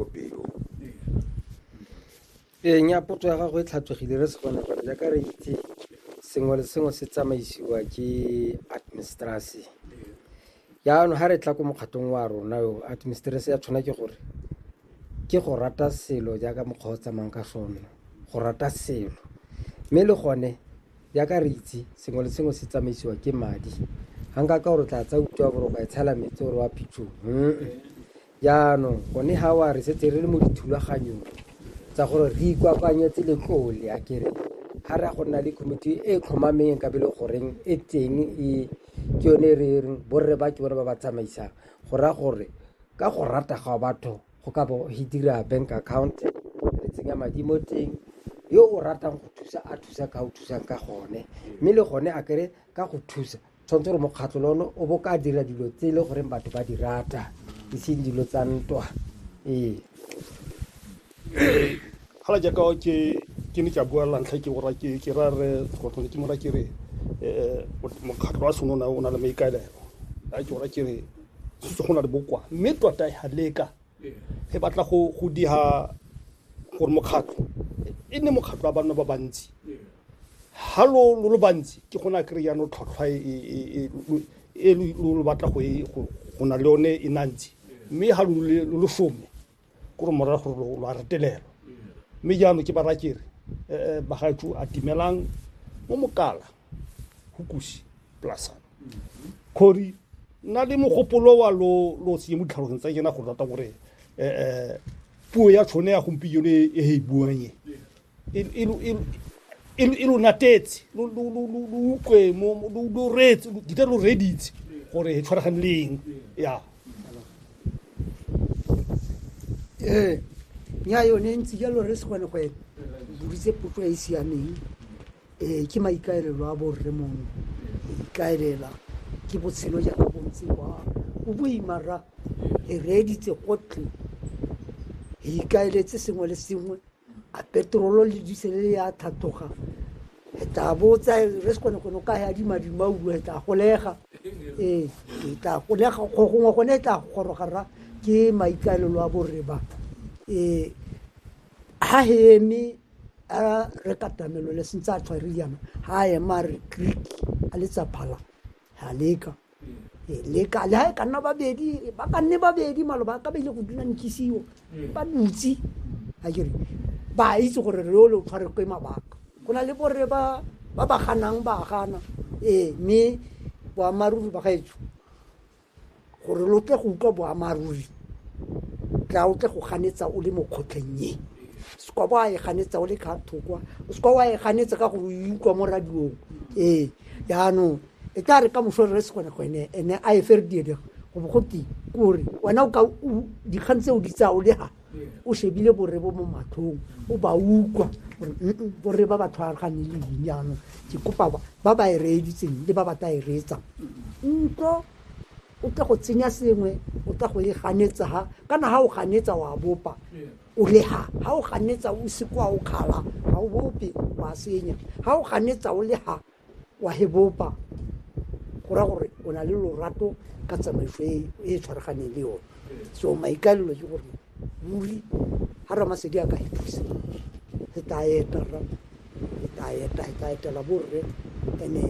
kopelo ee nya potso ya gago e tlhatswegile re se kgone gore jaaka re itse sengwe le sengwe se tsamaisiwa ke administrasi jaanong ga re tla ko mokgatong wa rona yo administrasi ya tshwana ke gore ke go rata selo jaaka mokgwa o tsamayng ka sone go rata selo mme le gone jaaka re itse sengwe le sengwe se tsamaisiwa ke madi ga nka ka gore tla tsa utlwa gore o ka e tshela metsi gore wa phitshong Jaanong gone ga wa re setse re le mo dithulaganyong tsa gore re ikwakwanyetse letlole a kere ga re ya go nna le committee e tlhomameng ka bele goreng e teng e ke yone e re reng borre ba ke bone ba ba tsamaisang go raya gore ka go rata ga batho go ka bo he dira bank account re tsenya madi mo teng yo o ratang go thusa a thusa ka o thusang ka gone mme le gone a kere ka go thusa tshwanetse gore mokgatlho le one o bo ka dira dilo tse e le goreng batho ba di rata e seng dilo tsa ntwa ee hala jaaka ke ke ne ka bua lantlha ke ora ke ke ra re tlotlone ke mora ke re eh mokgatlho wa sone o na- o na le maikaelelo a ke ora ke re se go na le bokoa mme tota ya leka Re batla go diha gore mokgatlho e nne mokgatlho wa banna ba bantsi ha lo lo bantsi ke gona a kry jaanong tlhwatlhwa e, e, e, e lo batla go e, go na le yone e nantsi mme ga lo lo some ko re morago gore lo a retelelwa mme jaanong ke bara kere um eh, eh, bagaetsho a timelang mo mokala go kusi plasana khori nna le mogopolo wa lo lo se mo ditlhalogeng tsa kena go rata gore eh puo ya tshone ya gompieno e e e buang e e e lo- e lo- e lo- e lo natetse lo lo lo lo lo ukwe mo mo- lo lo retse lo- dita lo reditse gore e tshwaragane le eng ya ee nya yone ntse jalo re se kgone go e buritse potso e e siameng Ee, ke maikaelelo a borre mongwe go ikaelela ke botshelo jaaka bo ntse kwa bo boima ra e reeditse gotlhe e ikaeletse sengwe le sengwe a petrolo le disele le ya thathoga e tla bo tsa re se kgone gone o ka ya dimadimaulu e tla golega ee e tla golega go gongwe gone e tla goroga ra ke maikaelelo a borre ba ee ha he eme a re katamelo le sentse a tshware yana ha a ema a re creek a letsa phala ha leka e leka le ha e ka nna babedi ba ka nne babedi maloba a ka ba ile go dula nkisiwo ba dutse a kere ba itse gore re ole o tshware kwe mabaka go na le borre ba ba ganang ba gana ee mme boammaaruri ba gaetsho gore lo tle go utlwa boamaruri tla o tle go ganetsa o le mo kgotlheng e se kwa ba e ganetsa o le ka thokwa o se kwa wa e ganetsa ka gore o e utlwa mo radiong ee jaanong e tla re ka moso re se gone go ene ene a e fere diedega go bo go teng kore wena o ka dikgang tse o di tsaya o le ha o shebile borre bo mo matlhong o ba utlwa gore borre ba ba tshwaragane le eng jaanong ke kopa ba ba e reeditseng le ba ba tla e reetsang ntlo o tla go tsenya sengwe o tla go e ganetsa ha kana ha o ganetsa wa bopa o le ha ha o ganetsa o se kwa o kgala ga o bope wa senya ha o ganetsa o le ha wa he bopa go ra gore o na le lorato ka tsamaiso e e tshwaraganeng le yone so maikalelo ke gore ruri ga ramasedi a ka he thusa re tla eta rra re tla eta re tla etela borre and-e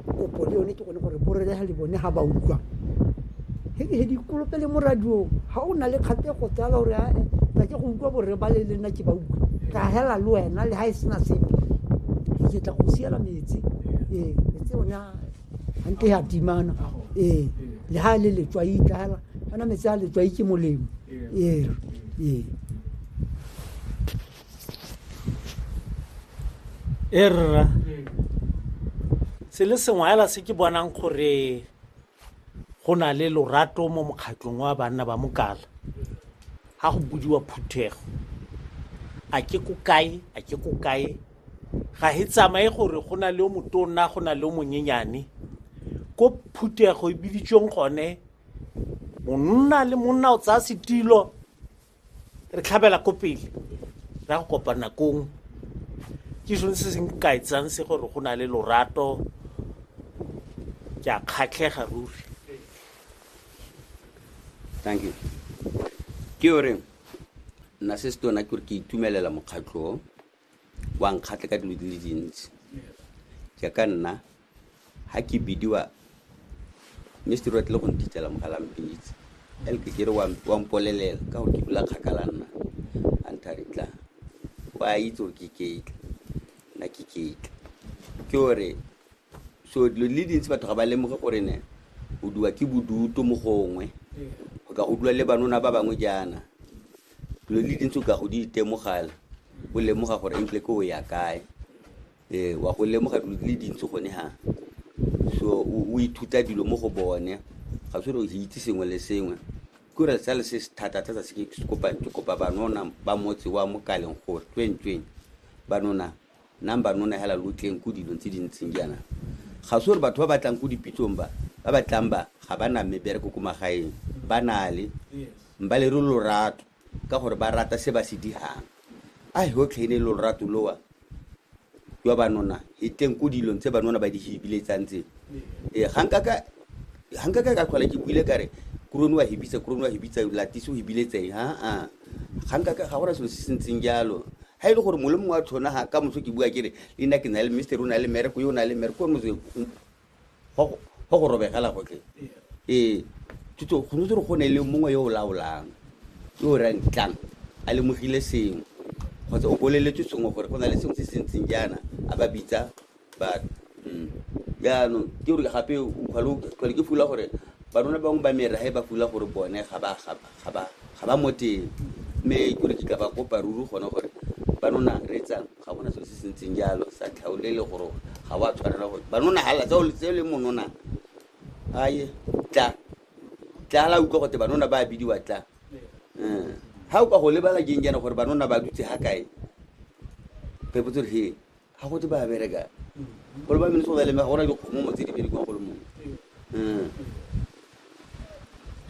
kopo le yone ke gone gore borre ga le bone ga ba utlwa hedihedi kolope le mo radiong ga o na le kgatego tsala gore ae ka ke go utlwa borre ba le le nna ke ba utlwa ka hela le wena le ga e sena sepe ke tla go siela metsi ee metsi one gante ya timana ee le ga le letswai ka hela ana metsi a letswai ke molemo ee ee e rra se le sengwe hela se ke bonang gore go na le lorato mo mokgatlong wa banna ba mokala ga go budiwa phuthego a ke ko kae a ke ko kae ga he tsamaye gore go na le o motona go na le o monyenyane ko phuthego e biditsweng gone monna le monna o tsaya setilo re tlhabela ko pele ra go kopa nakong ke sone se se nkaetsang se gore go na le lorato ke a kgatlhega ruri thank you ke o reng nna se se tona ke gore ke itumelela mokgatlho wa nkgatlhe ka dilo di le dintsi jaaka nna ga ke bidiwa mme setori wa tlile go nthitela mogala mpitse ele ke kere wa wa mpolelela ka gore ke dula kgakala nna a ntha re tla wa itse gore ke ketla nna ke ketla ke gore so dilo di le dintsi batho ga ba lemoge gore ne o duwa ke bodutu mo gongwe o ka go dula le banona ba bangwe jaana dilo le dintsi o ka go di itemogala o lemoga gore entle ke o ya kae ee wa go lemoga dilo di le dintsi gone ga so o ithuta dilo mo go bone ga se re itse sengwe le sengwe ke re sale se se thata thata se ke kopa ke kopa banona ba motse wa mokaleng gore tsweng tsweng banona Number no nahela lo tleng ko dilong tse di ntseng jaana. Ga se gore batho ba ba tlang ko dipitsong ba, ba ba tlang ba ga ba na mebereko ko magaeng, ba na le. Mba le re lorato ka gore ba rata se ba se dirang. A he go tlhaine lorato lowa jwa banona he teng ko dilong tse banona ba di hibiletsang tse. Ee, ga nka ka Ha nka ka ka tlhola ke buile ka re kurone wa hebitsa kurone wa hebitsa latise o hebile tseng aa ga nka ga gona selo se se ntseng jalo ha e le gore mole mongwe wa tlhona ga ka moso ke bua ke re le nna ke na le mister o na le mereko yo o na le mereko gore motse go go robegela gotlhe ee thuto go ntse re go ne le mongwe yo o laolang yo o rang tlang a lemogile sengwe kgotsa o boleletse sengwe gore go na le sengwe se se ntseng jaana a ba bitsa but jaanong ke gore gape tlhole ke fula gore barona bangwe ba mera he ba fula gore bone ga ba- ga ba- ga ba- ga ba mo teng mme ke gore ke ka ba kopa ruri gone gore banona re etsang ga gona selo se se ntseng jalo sa tlhaole le gore ga wa tshwanela gore banona hala tseo le- tseo le monona aye tla tla la utlwa gote banona ba bidiwa tla Eh, ha o ka go lebala jeng jana gore banona ba dutse ha kae phepotso re he ga go tse ba bereka gore ba minnesota le ga gona dikgomomo tse di berekiwang go le mongwe Mm.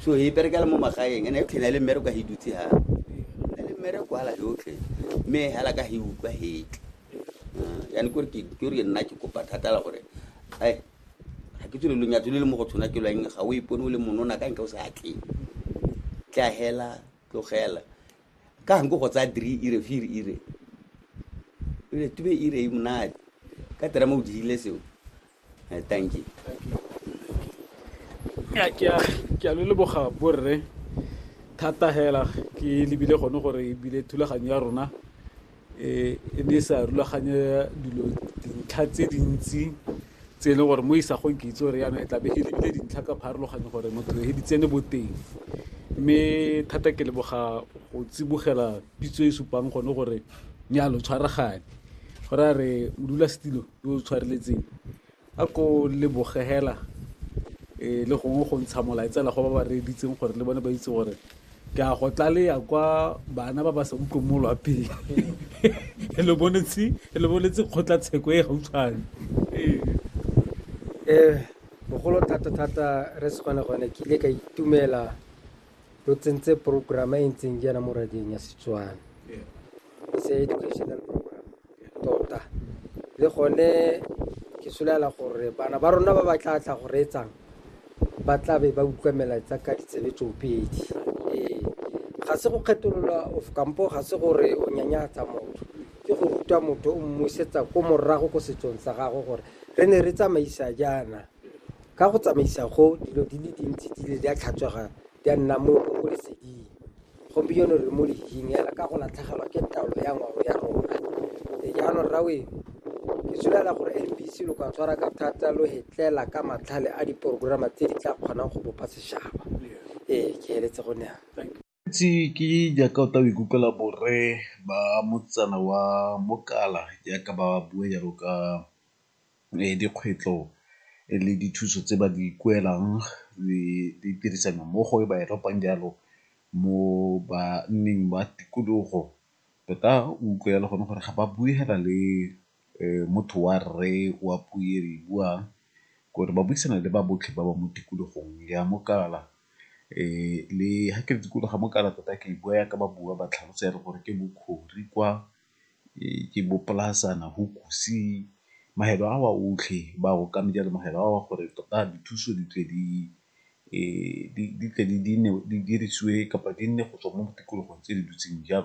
so e berekela mo magaeng ene yotlhe na le mmereko ka hidutse ha na le mmereko hala yotlhe mme hala ka hi utlwa hetle yani kore ke ke re nna ke kopa thata la gore ai ga ke tswele lonyatso le le mo go tshwana ke lwang ga o ipone o le monona ka nka o sa atle tlahela tlogela ka nko go tsaya three ire fear ire ire tube ire e monate ka tera mo o dirile seo Eh, thank you Ya, ke a- ke a lo leboga borre thata hela ke lebile gone gore ebile thulaganyo ya rona e ne e sa rulaganya dilo dintlha tse dintsi tse e leng gore mo isagong ke itse gore yana e tlabe e lebile dintlha ka pharologanyo gore motho e di tsene boteng mme thata ke leboga go tsibogela pitso e supang gone gore nyalo tshwaragane go ra re modulasetilo yo o tshwareletseng A ko leboge hela le gongwe go ntsha molaetsa hela go ba ba reeditseng gore le bone ba itse gore ke a go tlaleya kwa bana ba ba sa utlweng mo lwapeng le boletse le boletse kgotlatsheko e gautshwane um bogolo thata thata re se gone gone ke ile ka itumela lo tsentse program e ntseng jaana mo radieng ya setswana se educational program tota le gone ke solela gore bana ba rona ba ba tla tla go reetsang ba tla be ba utlwa melaetsa ka ditsebe tsoopedi ee ga se go kgetolola of kampo ga se gore o nyanyatsa motho ke go ruta motho o mmusetsa ko morago ko setsong sa gago gore re ne re tsamaisa jaana Ka go tsamaisa go, dilo di le dintsi di ile di a tlhatswega di a nna mo leseding. Gompieno re mo lehing hela ka go latlhegelwa ke taolo ya ngwao ya rona. Jaanong Rraweru, ke solela gore M_B_C lo ka tshwara ka thata lo re tlela ka matlhale a diporokorama tse di tla kgonang go bopa setšhaba. Ee, ke feletse go ne yana. Itse ke jaaka o tla o ikutlwela borre ba motsana wa Mokala jaaka ba bua jalo ka dikgwetlho le dithuso tse ba di kuelang le tirisano mmogo e ba e tlhopang jalo mo banneng ba tikologo tota o utlwe jalo gone gore ga ba bue fela le motho wa rre wa puo e re e buang ke gore ba buisana le ba botlhe ba ba mo tikologong ya mokala le ha ke re tikologo ya mokala tota ke bua ya ka ba bua ba tlhalosa ya re gore ke Bokhori kwa, ke bo Polasana, mafelo a wa otlhe ba okamela jalo mafelo a wa gore tota dithuso di tle di dirisiwe kapa di nne go tswa mo tikologong tse di dutseng jalo.